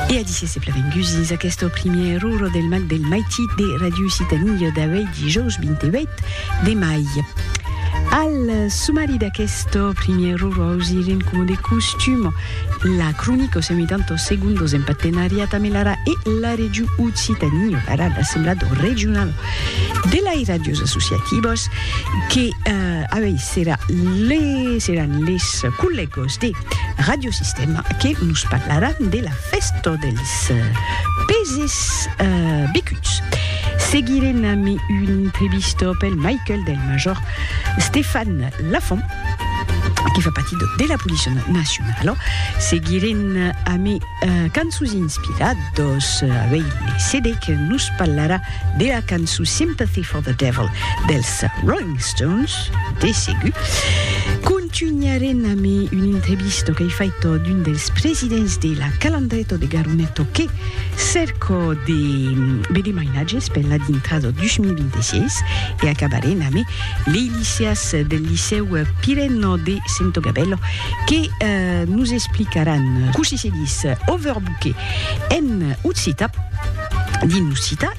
E a disse se pleren gusins aqueste primièr error del Mac del Maitit de Radio Occitanie d'avei dijòus 28 de mai. Al sumari d'aqueste primièr error ausiren coma de costum la cronica o semitanto segundos en partenariat amb l'ARA e la Regiu Occitanie, l'ARA l'Assemblat Regional de lai Radios Associativos que avei serà les seràn les collègos de Radiosistèma que nos parlarà de la fèsta dels peses becuts. Seguirem amb una entrevista pel Michael del major Stefan Lafont, que fa partir de la Policia Nacionala. Seguirem amb cançons inspirados avei le CD que nos parlarà de la cançon Sympathy for the Devil dels Rolling Stones. de segur. Contunharem amb un entrevista qu'ei faita d'un dels presidents de la Calandreta de Garoneto que cerca de veder mainatges per la dintrada 2026 e acabarem amb lei liceas del Licèu Pirena de Sento Gabèla que nos explicaràn cossí se ditz overbooker en occita, dins l'occita.